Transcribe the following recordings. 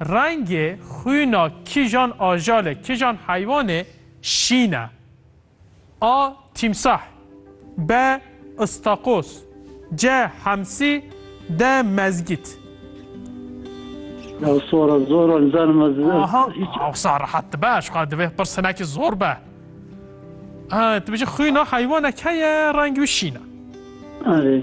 Rengê xwîna kîjan ajalê, kîjan heywanê şîn e? A. Tîmsah B. Îstakoz C. Hemsî D. Mezgît. Ew sora zor e nizanim ez Aha, hiç awsa rehat dibe, ji xwe divê pirs hinekî zor be. Ah, tu bijî xwîna heywanek heye rengê wî şîn e. Erê.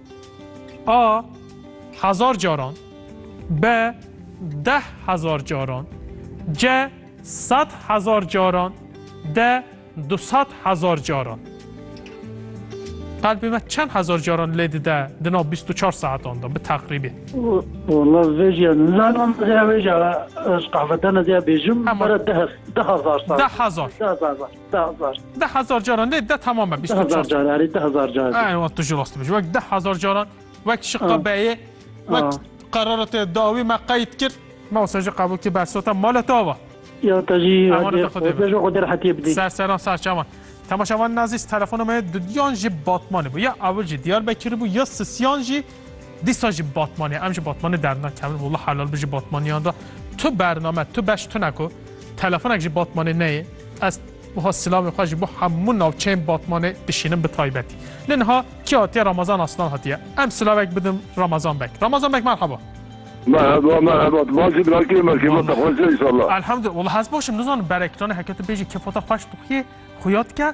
A hezar caran B deh hezar caran C sed hezar caran D du sed hezar caran Qalbê me çend hezar caran lê dide di nav bîst û çar saetan de bi teqrîbî? Walla vê jîya nizanim vê jîya ez qehvetene diya bêjim bere deh deh hezar sal. Deh hezar. Deh hezar. Deh hezar caran lê de tamam be. Deh hezar car erê deh hezar car. Ay wan tu jî rast dibêjî. Wek deh hezar caran wek şiqa beyê wek qerara te dawî me qeyd kir. Me wisa jî qebûl kir bersota mala te ava. Ya te jî beşa xwedê rehetiyê bidî. Ser seran ser çavan. Temaşevanên ezîz telefona me duyan jî Batmanê bû. Ya ewil jî Diyarbekirî bû ya sisiyan jî. Dîsa ji Batmanê em ji Batmanê dernakevin wla helal bi ji Batmaniyan re tu bername tu beş tune ku telefonek ji Batmanê neyê ez wiha silavê xwe ji bo hemû navçeyên Batmanê dişînim bi taybetî. Lê niha kî hatiye Ramazan Aslan hatiye. Em silavek bidin Ramazan bek. Ramazan bek merheba. Merheba merheba tu baş î bira kê me kêfa te xweş e înşallah. Elhamdulillah wla ez baş im nizanim berek tane heke tu bêjî kêfa te xweş dixuyê xuya dike.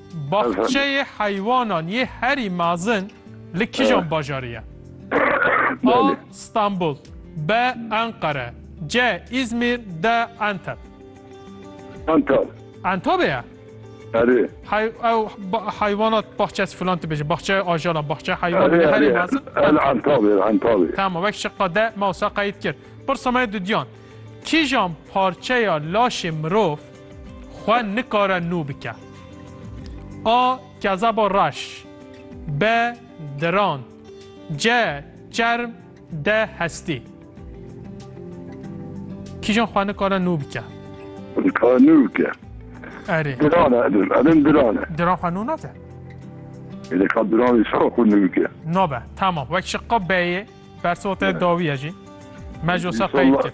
Baxçeyê heywanan yê herî mezin li kijan bajarî ye? A. Stenbul B. Enqere C. Îzmîr D. Enteb Entab. Entabê ye? Erê. Hey ew heywanat baxçes filan dibêje, baxçeyê ajalan, baxçeyê heywanan yê herî mezin. Entabê, entabê. Tamam, wek şiqa de me wisa qeyd kir. Pirsa me ye dudiyan. Kîjan parçeya laşê mirov xwe nikare nû bike? A. Kezeba reş B. Diran C. Çerm D. Hestî Kîjan xwe nikare nû bike? Nikare nû bike. Erê. Diran e edim. Edim diran e. Diran xwe nû nake. Êdê ka diran îsa xwe nû bike. Nabe. Tamam. Wek şiqa B'yê bersiva te dawiye jî. Me ji wisa qeyd kir.